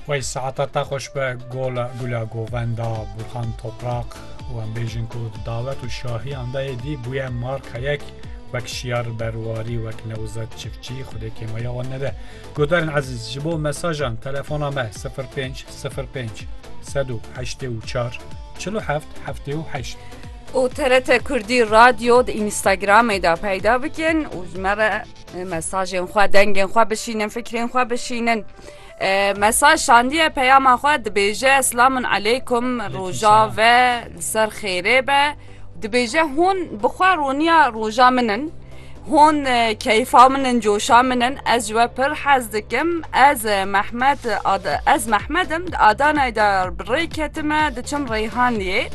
Wey saeta te xweş be gola gula govenda Burhan Toprak û em bêjin ku di dawet û şahiyan de yê dî bûye marka yek wek şiyar berwarî wek Newzet Çiftçî xwedê kêmaya wan nede. Godarên ezîz ji bo mesajan telefona me 05 05 184 47 78. û TRT Kurdî Radyo di Instagramê de peyda bikin û ji me re Mesajên xwe, dengên xwe bişînin, fikrên xwe bişînin. Mesaj şandiye peyama xwe dibêje Selamun Eleykum roja ve li ser xêrê be. Dibêje hûn bi xwe roniya roja min in. Hûn keyfa min in, coşa min in. Ez ji we pir hez dikim. Ez Mehmed ez Mehmed im di Adanayê de bi rê ketime diçim Reyhanliyê.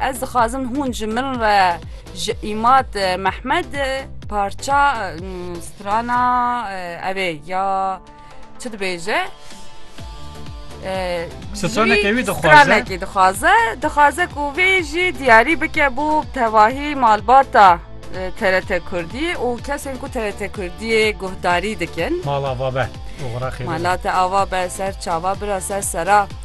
Ez dixwazim hûn ji min re Ji Îmad Mehmed parça strana ev ê ya çi dibêje? Stranekê wî dixwaze. Stranekê dixwaze, dixwaze ku vê jî diyarî bike bo tevahî malbata TRT Kurdî û kesên ku TRT Kurdiyê guhdarî dikin. Mala va be. Mala te ava be ser çava bira ser sera.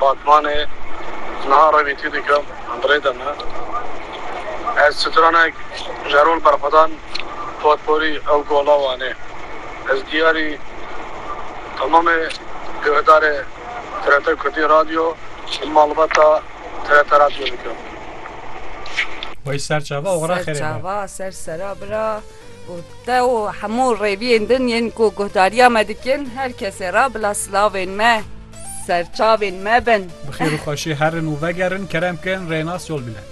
Batmanê niha revîtî dikim birêde me. Ez stranek jerol berxwedan potporî ew gola wanê. Ez diyarî temamê guhdarê TRT Kurdî Radyo û malbata TRT Radyo dikim. Wey serçava oxira xêrê be. Serçava ser sera bira û te û hemû rêviyên din yên ku guhdariya me dikin, her kesê re bila silavên me. Serçavên me bin. Bi xêr û xweşî herin û vegerin, kerem kin, rênas yol bine.